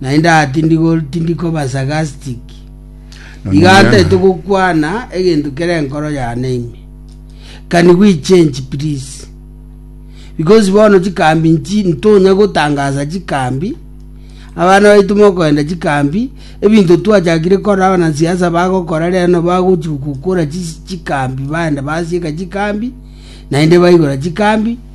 naende aa tindi koba sarcastic, iga ntaete gokwana egento kere enkoro yane ime. Can we change please? Because bono chikambi nchi ntonya gotangasa chikambi, abana baito mokoenda chikambi, ebinto twachakire kora abana siasa bagokora reno bagochi gokora chikambi baenda basieka chikambi, naende baigora chikambi,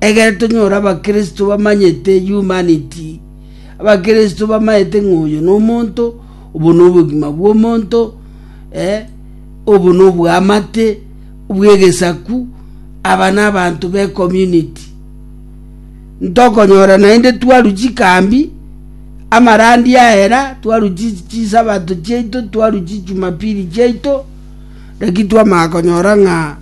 Ekero tonyora abakristo bamanyete humanity, abakristo bamanyete ng'a oyo nomonto, obo nobogima bwomonto, obo nobwamate bwegesaku, aba nabanto be community. Ntokonyora naende twaru chikambi, amarandi aera, twaru chisabato chiaito, twaru chijumapili chiaito, naki twamanya konyora ng'a.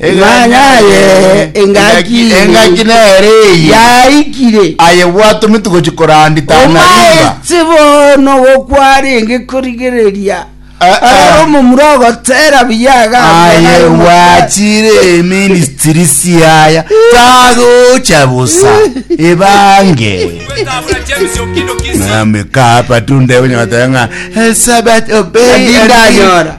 Eganya aye engaki ime. Engaki nere eye. Yaikire. Aye bwatomi tigochi korandita na riba. Omaete bono gokwarenge korigereria. Aroro omomura ogotera buya agambwa naye Aye bwachire eministiri siaya. Tagocha bosa. Ebange. Nami kapa tunde bunyota nga. Sabat obey. Ndinganyora.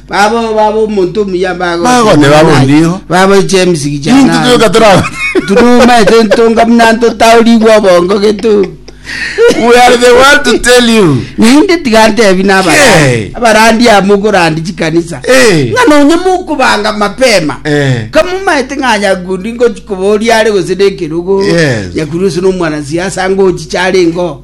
Babo baba omonto omuya Bagote ne baba ondigo. baboiche emisigi Intu chana tuyoka terago. tunumaete ntonga buna ntotaorigwe obongo getu We are the one to tell you. naende tiga ntebi na Hey. abarandi amo okorandi chikanisa Eh. ng'a nonya mokobanga mapema Eh. kamumaete ng'a nyakundi ngochi koboria are gose nekerogo Yes. nyakundi gose nomwana siasa ngochicha are ingo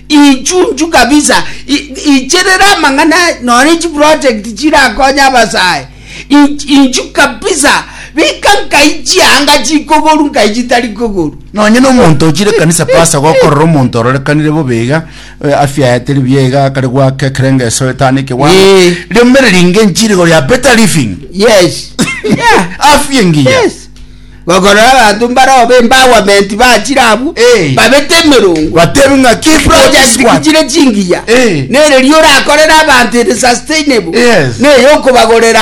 Inchunchu kabisa icherera amang'ana nonye chiproject chirakonye abasae inchu kabisa bika nkai chianga chikogoru nkai chitari kogoru nonye na omonto ochire kanisa pasa gokorora omonto ororekanire bobe iga eh, afya yaye teri buya iga akare gwaka ekerenge eso etano ekewango Eh. riomereri inge nchirigo ya better living yes yeah. afya engiya yes Bakorora abanto mbarao b'empowerment bachire abwo, Eh. babete emerongo, Batebe ng'a ki project ki project chire chingiya, Eh. nereria orakorere abanto ere sustainable, Yes. neyokobagorera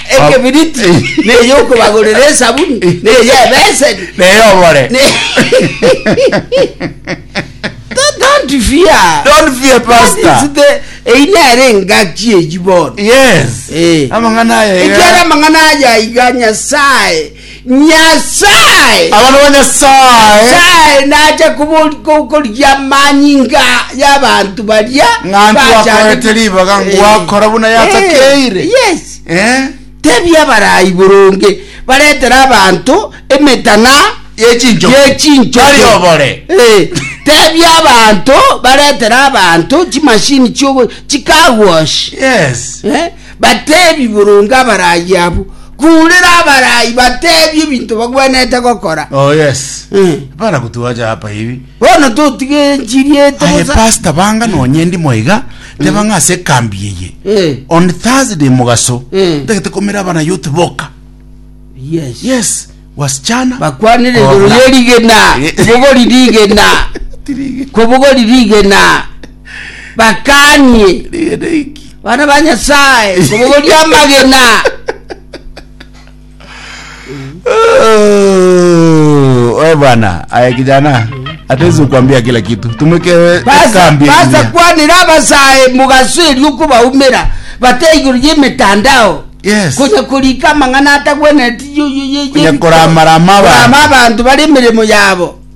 ekebiriti, Eh. neyokobagorera esabuni, neye ebeseni, Neye obore. Ne- Don't- don't fear. Don't fear, That Pastor. is the- eyi nere engaki eyi bono Yes. Eh. Amang'ana aya iga. ekiara amang'ana aya iga nyasaye nyasaye Abana ba Nyasaye. nyasaye nacha kubori- ko- korigia amanyinga y'abantu baria Ng'antu bachani- wakoete ribaga, Eh. ngwakora buna yatakeire. Eh, yes Eh? Tebia abarai boronge baretere abanto emetang'a y'echinchoki. Ee, tebia abanto baretere abanto chimashini chiogo chicar wash. Yes. Eh, batebi boronge abarai abo kurera abarai batebi ebinto bagwenerete gokora Oh yes. Eh. Para kutuacha hapa hivi. Bono totige enchiri ete Aye bosa. pastor banga nonye ndi moiga teba ng'a ase ekambi eye Eh. on Thursday mogaso Eh. ntagete komera abana youth boka Yes. yes wasichana Bakwanire Ola. igoro ye rigena. Eh. Kobogori rigena. Tirige. Kobogori rigena. Bakanie. Rigena iki. Bana ba Nyasaye. Kobogori amagena. Oe bwana, aya kijana atezi kuambia kila kitu. Tumweke Basa, kambi ya basa kijana. kwanira abasae mugaso erio okobaumera bate igoro y'emetandao Yes. konya korika amang'ana atagwenereti yo- yo- yo- Konya yeriko. koramarama abanto. Korama abanto bare emeremo yabo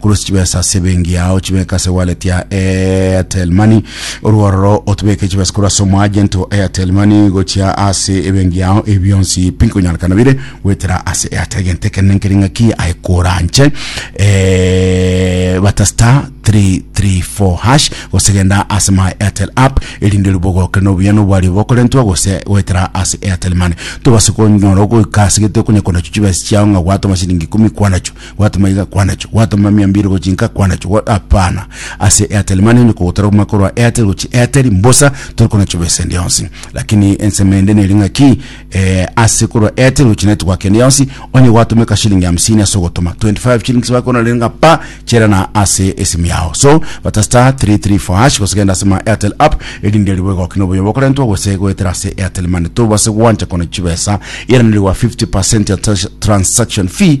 Korwa ase chibesa ase ebenki yao chibeke ase wallet ya Airtel Money. Orwo ororo otobeke chibesa korwa ase omoagent o Airtel Money gochia ase ebenki yao. Ebi bionsi pinkonyarekana bire goetera ase Airtel egento ekere nenkeri ng'aki aye koranche eh, bata star 334 hash gose genda ase my Airtel app erinde ribogoke nobuya nobwari bokorentwa gose goetera ase Airtel Money tobase konyora ogoika ase gete okonye konacho chibesa chiao ng'a gwatoma siringi ikumi kwanacho Gwatoma iga kwanacho, gwatoma mia mbiri gochia inka kwanacho, gwa, hapana, ase Airtel Money onye kogotara kogima korwa Airtel gochia Airtel mbosa tori konachoba esende yonsi. Lakini ensemo ende neri ng'aki, eh, ase korwa Airtel gochia network ende yonsi, onye gwatoma ekashilingi hamsini ase ogotoma, 25 shillings bakoranera ng'a pa, chera na ase esimu yao. So, bata star three three four hash gose genda ase ma Airtel app erinde ribe goki na oboyo bokorentwa gose goetera ase Airtel Money. Tobase gwancha kona chibesa, eranire gwa 50% ya trans- transaction fee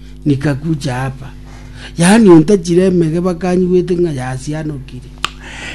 Nikakucha apa, yaani ontachire emege bakanyigwete ng'a yasianokire.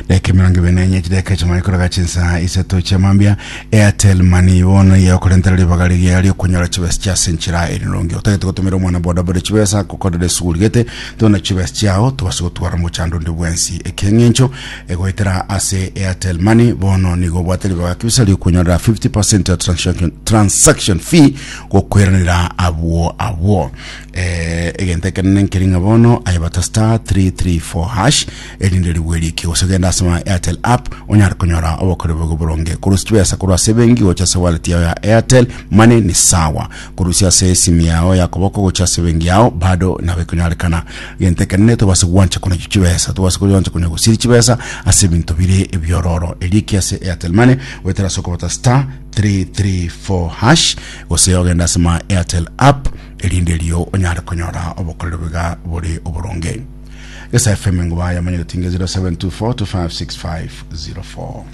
Dakika emerongo ebere nenye chidaeka chimare koraga chinsa isato chia mambia airtel money bono iye okorentera ribaga riria riokonyora chibesa chia ase enchera eri nongi otagete gotumera omwana bodaboda chibesa gokorera esuguru rigete tuna chibesa chiao tobase gotwara mochando onde bwensi ekeng'encho egoetera ase airtel money bono nigo obwate ribaga kibisa riokonyorera 50% ya transaction, transaction fee gokweranera abwo abwo eh, egento ekenene nkeri ng'a bono aye bata star 334 hash erinde rigwe riki gose genda ase ma airtel app onyare konyora obokore bogo boronge korusia chibesa korwa ase ebenki gocha ase wallet yao ya airtel money ni sawa korusia ase esimu yao ya koboko gocha ase ebenki yao bado nabo ekonyarekana egento ekenene tobase gwancha konya chibesa tobase gwancha konya gosiri chibesa ase ebinto bire ebiororo eriki ase airtel money goetera ase okobata star 334#, gose ogende ase my Airtel app erinde erio onyare konyora obokorero biga bore oboronge. Gesa FM Engubaya manya gotinga 0724 256504.